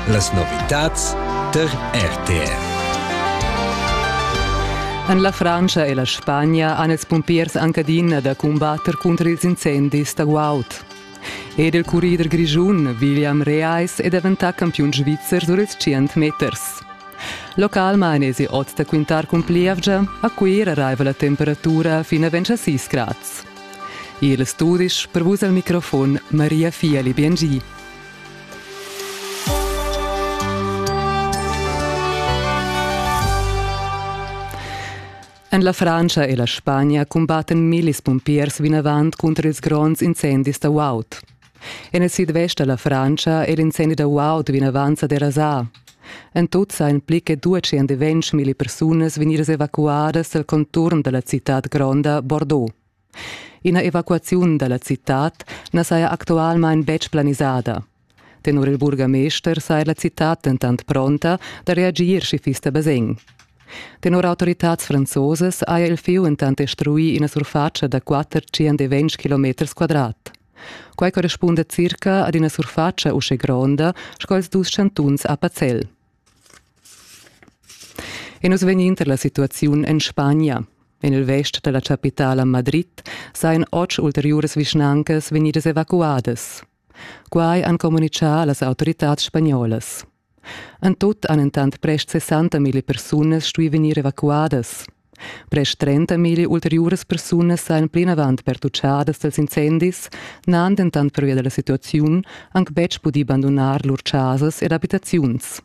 Las novitads tar RTR. En la Frantscha e la Spagna han ils pumpiers anc adina da cumbatter cunter ils incendis da guaud. Ed il currider grischun William Reis è daventà campiun svizzer sur ils 100 meters. Local mainesi oz da quintar cun plievgia, a Cuira raiva la temperatura fin a 26 grads. Igl e studisch per vus al microfon Maria Fieli Biengi. En la Frantscha e la Spagna cumbatten millis pumpiers vinavant cunter ils gronds incendis da Wout. En il sidvest da la Frantscha è l'incendi da guaud vinavant sa derasà. En tut sajan pli che 200 milli persunas vegnidas evacuadas dal conturn da la citad gronda Bordeaux. Ina evacuaziun da la citad na saja actualmain betg planisada. Tenor il burgamester saja la citad dentant pronta da reagir, sch'i fiss da basegn. Tenor autoritads franzosas haja il fieu entant destruì ina surfatscha da 400 km quadrat. Quai correspunda circa ad ina surfatscha uschè gronda sco ils dus chantuns a Pazel. E nus vegnin tar la situaziun en Spagna. En il vest da la chapitala Madrid sajan otg ulteriuras vischnancas vegnidas evacuadas. Quai han communitgà las autoritads spagnolas. En tut han entant prest 60.000 persunas stuì vegnir evacuadas. Prest 30.000 ulteriuras persunas sajan plinavant pertutschadas dals incendis, n'han dentant pervia da la situaziun anc betg pudì bandunar lur chasas ed abitaziuns.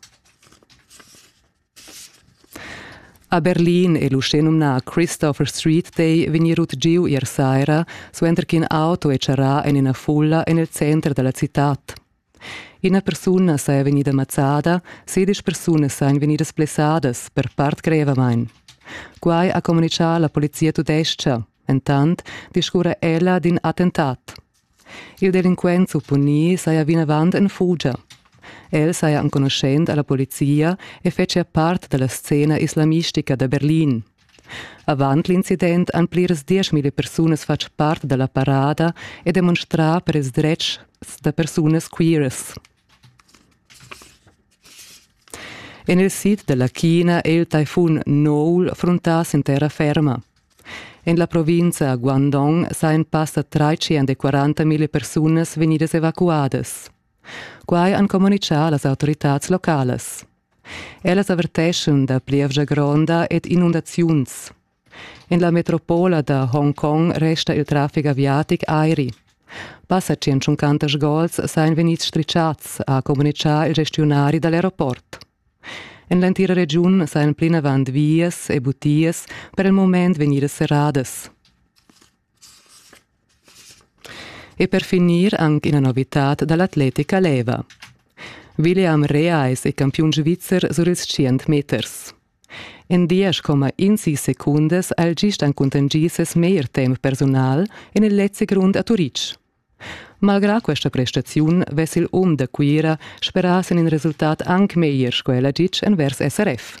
A Berlin è l'uschenumnà Christopher Street Day vegnì rut giu ier saira, suenter ch'in auto è charrà en ina fulla en il center da la citad. Ina persuna saja vegnida mazzada, sedisch persunas sajan vegnidas blessadas per part grevamain. Quai ha communitgà la polizia tudestga. Entant discurra ella d'in attentat. Il delinquent supponì saja vinavant en fugia. El saja enconuschent a la polizia e fetschia part da la scena islamistica da Berlin. Avant l'incident han pliras dieschmila persunas fatg part da la parada e demonstrà per ils dretgs da persunas queeras. En il sid da la China è il taifun Noul fruntà sin terra ferma. En la provincia Guangdong sajan passa 340.000 persunas vegnidas evacuadas. Quai han communitgà las autoritads localas. Ellas averteschon da plievgia gronda ed inundaziuns. En la metropola da Hongkong resta il traffic aviatic airi. Passa 150 gols sain vegnids strichads, ha communitgà il gestionari da l'aeroport. En l'entira regiun sain plinavant vias e butias per il moment vegnidas serradas. E per finir anc ina novitad da l'atletica leva. William Reais è campiun svizzer sur ils tschient meters. En diesch coma insi secundas ha el gist encuntengi ses meglier temp personal en il letzig rund a Turitg. Malgrà questa prestaziun vess il um da Cuira sperà sin in resultat anc meglier sco el ha ditg envers SRF.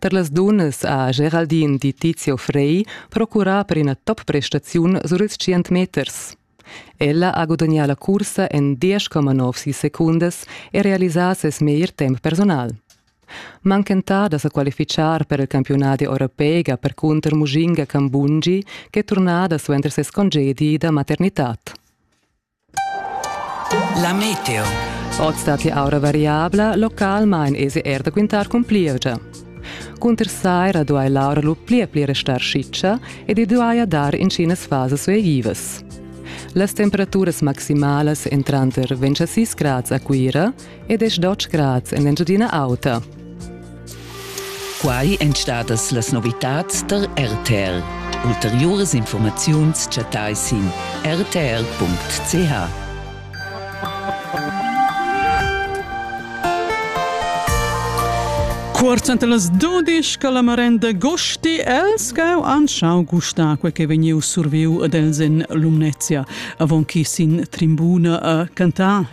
Per las dunnas ha Geraldine di Tizio Frey procurà per ina top-prestaziun sur ils tschient meters. Ella ha gudagnà la cursa en 10,9 secundas e realisà ses meglier temp personal. Manchentà da sa qualifichar per il campiunat europea percunter Mujinga Kambungi, ch'è turnada suenter ses congedi da maternitad. La meteo. Oz datti aura variabla, localmain esi er da quintar cun plievgia. Cunter saira duai l'aura lu pli e pli restar schitscha ed i duaja dar intginas fasas suegivas. Las temperaturas maximalas entran tar 26 grads a Cuira ed es dotg grads in l'Engiadina Auta. Quai èn stadas las novitads tar RTL. Ulteriuras informaziuns chattai sin rtl.ch. Cuorz ante las 12 che la marenda gosti els gau anschau gusta quel che vegniu surviu ad els in Lumnezia, avon chi sin trimbuna a cantar